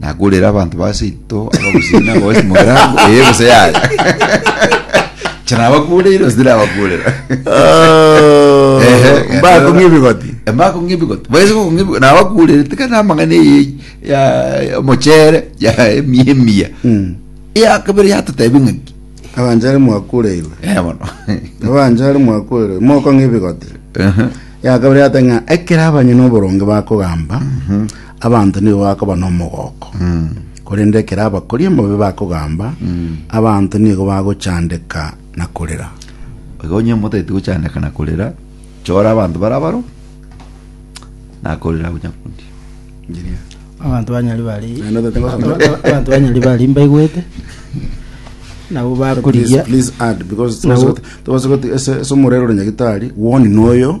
Nakurire abanto ba seito abagusii na abagosi mu erango eye gose yaya. Inche nabakureire gose tinabakurera. Oh, Ehe, mbakong'ia ebigoti. Embakong'ia ebigoti. Baise gokong'ia ebigoti. Nabakurere tika na amang'ana eye ya ya omochere ya emia emia. Mm. Eya kabere yatotebia ng'aki. abanchari mwakureirwe Eh bono. abanchari mwakureirwe mokong'a ebigoti Ehe. yakabere yate ng'a ekero abanyene oboronge bakogamba Abanto nigo bakoba nomogooko, korende ekero abakori omobe bakogamba, abanto nigo bagochandeka na korera. Igo onye motaeti gochandeka na korera, chora abanto bare abaro, na korera agonyakundia. Engineer. Abanto banyari bari Naende otete gosoma. abanto banyari bari mbaigwete nabo bakorigia Please, please add because Nabo- tobasa goti ase ase omorero ore nyagitari one noyo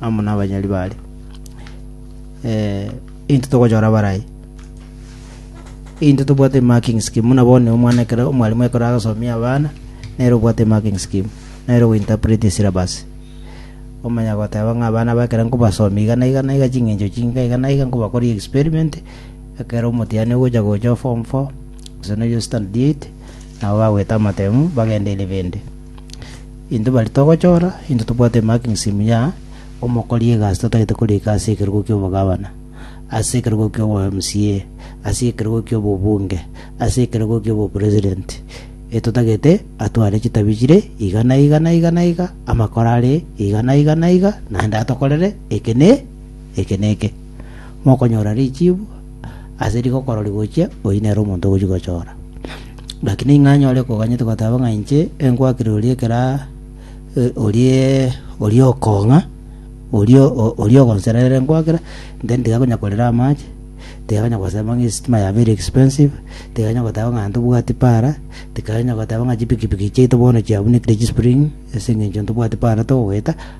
amo nabanyari bare eh, into togochora barai into tobwate marking scheme muna bone omwana ekero omwalimu ekero agasomia abana nero obwate marking scheme nero gointerpret syllabus omanya goteba ng'a abana bakera nkobasomi iga na iga na iga ching'encho chinga iga na iga nkobakoria experiment ekero omotiani ogocha gocha form 4 gose noyo standard 8 nabo bagweta amatemu bagendeire bende Intwe baria togochora, intwe tobwate emakingisimu ya omokori egasi totagete korika ase ekerogo ki'obogabana, ase ekerogo ki'obo-MCA, ase ekerogo ki'obobunge, ase ekerogo ki'obopresidenti, etotagete atware chitabi chire iga na iga na iga na iga, amakoro are iga na iga na iga, naende atokorere eke na eke na eke. mokonyora richibu ase rigokoro rigochia oyio nere omonto ogochia gochora. Gaki ning'o anyare koganyete goteba ng'a inche enkwakire oria ekera eh, oria oria okong'a oria o- oria ogonsera ere nkwakera then tiga konya korera amache tiga konya gosema ng'a esitima ya very expensive tiga konya goteba ng'a ntobwati para tiga konya goteba ng'a chipikipiki chiaito bono chiabunekire chispring ase eng'encho ntobwati para togoeta